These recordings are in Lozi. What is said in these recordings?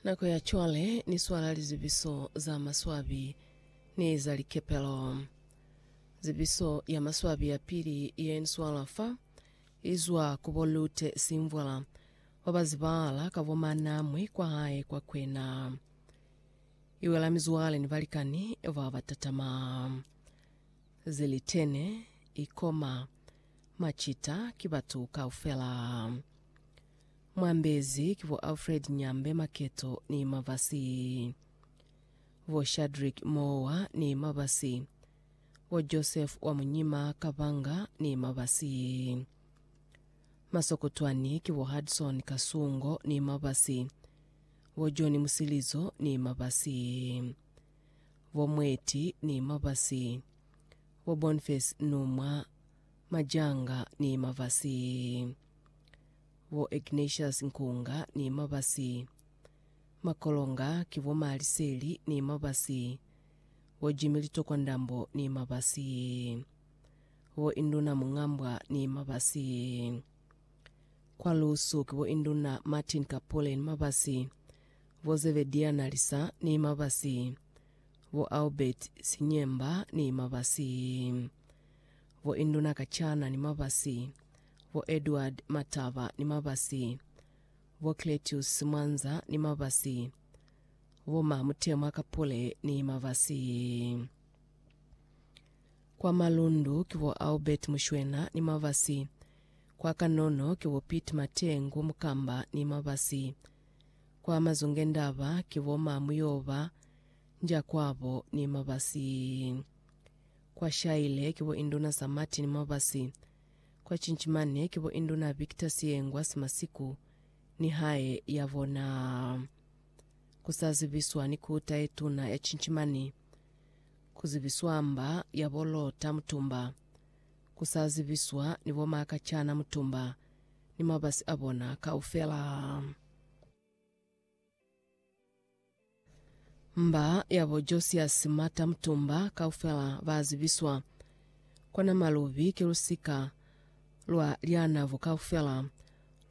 Nako ya cwale ni swala lizubiso za maswabi ni za likepelo. Zubiso ya maswabi ya pili ye ni swala fa izwa ku bo Lute Simvwala ba ba zibahala ka bo Manamwi kwa hae kwa Kwena. Iwela mizwale ni balikani ba ba tatama. Zilitene, ikoma, macita ki batu kaufela. Mwambezi ki bo Alfred Nyambe Maketo ni Mabasi, bo Shadrick Moowa ni Mabasi, bo Joseph wa Munyima Kabanga ni Mabasi. Masokotwani ki bo Hudson Kasungo ni Mabasi, bo John Musilizo ni Mabasi, bo Mweti ni Mabasi, bo Bonface Numwa Majanga ni Mabasi. Bo Ignatius Nkunga ni Mabasi. Makolonga ki bo Ma Liseli ni Mabasi. Bo Jimmy Litokwa Ndambo ni Mabasi. Bo Induna Mungambwa ni Mabasi. Kwa Lusu ki bo Induna Martin Kapule ni Mabasi. Bo Zebedia Nalisa ni Mabasi. Bo Albert Sinyemba ni Mabasi. Bo Induna Kachana ni Mabasi. bo Edward Mataba ni Mabasi, bo Cletius Mwanza ni Mabasi, bo Ma Mutemwa Kapule ni Mabasi. Kwa Malundu ki bo Albert Mushwena ni Mabasi, kwa Kanono ki bo Pete Matengu Mukamba ni Mabasi, kwa Mazungendaba ki bo Ma Muyoba Ndyakwabo ni Mabasi, kwa Shaile ki bo Induna Za Martin Mabasi, kwa Cinchimane ki bo Induna Victor Siyengwa Simasiku ni hae ya bona ku sa zibiswa ni Kuta ye Tuna ya Cinchimane, ku zibiswa mba ya bo Lota Mutumba, ku sa zibiswa ni bo Makachana Mutumba ni mabasi a bona kaufela. Mba yabo Josiasi mata mutumba kaufela ba zibiswa, kona malubi ki lusika lwa lyanabo kaufela,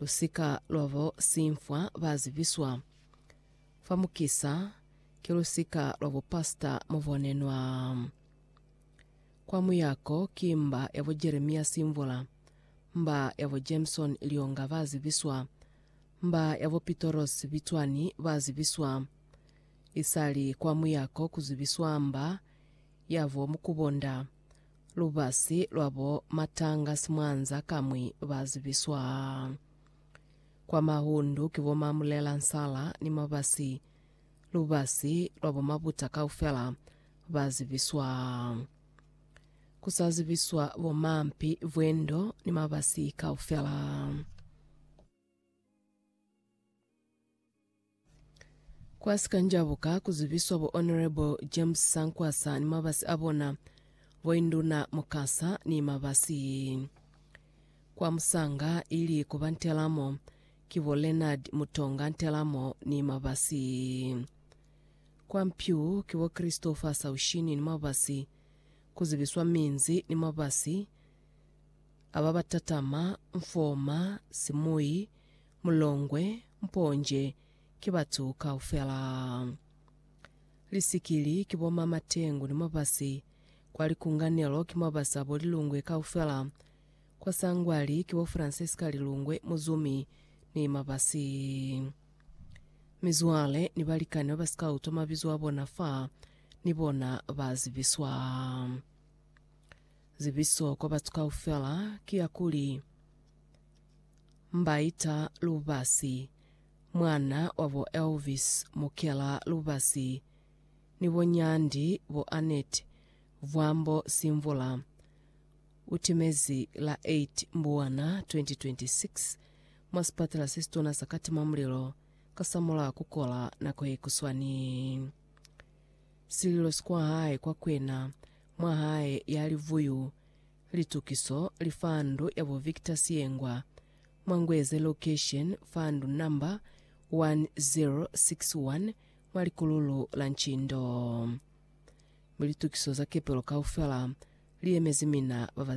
lusika lwabo simfwa ba zibiswa, fa mukisa ki lusika lwa bupasita mubonenwa. Kwa muyako ki mba yabo Jeremiasi Mvula, mba yabo Jameson Lyonga ba zibiswa, Mba ya bo Pitoros Bitswani ba zibiswa. Isali kwa muyako ku zibiswa mba ya bo Mukubonda. Lubasi lwa bo Matanga Simwanza kamwi ba zibiswa. Kwa Mahundu ki bo Mamulela Nsala ni Mabasi. Lubasi lwa bo Mabuta kaufela ba zibiswa. Ku sa zibiswa bo Mampi, Vwendo ni Mabasi kaufela. Kwa si ka njabuka ku zibiswa bo Honourable James Sankwasa ni mabasi a bona, bo Induna Mukasa ni mabasi kwa musanga ili ku ba Ntelamo ki bo Leonard Mutonga Ntelamo ni mabasi kwa Mpyu ki bo Christopher Saushini ni mabasi ku zibiswa minzi ni mabasi Aba ba tatama, Mfoma, Simuyi, Mulongwe, Mponje ki batu kaufela. Lisikili ki bo ma Matengu ni Mabasi. Kwa Likunganelo ki mabasi abo Lilungwe kaufela. Kwa Sangwali ki bo Francisca Lilungwe, Muzumi ni Mabasi. Mizwale ni balikani ba ba si ka utwa mabizo a bona fa, ni bona ba zibiswa. Zibiso kwa batu kaufela ki ya kuli, Mbaita Lubasi, mwan'a wa bo Elvis Mukela Lubasi ni bo Nyandi bo Annette Vwambo Simvula, u timezi la 8 Mbuwana 2026 mwa sipatela se situna sa Katimamulilo kasamulaho ku kola nako ye kuswani. Sililo si kwa hae kwa kwena, mwa hae ya livuyu, litukiso li fa ndu ya bo Victor Siyengwa, mwa Ngweze location fa ndu number 1061 mwa likululu la Nchindo. Mi litukiso za kepelo kaufela li yemezi mina ba ba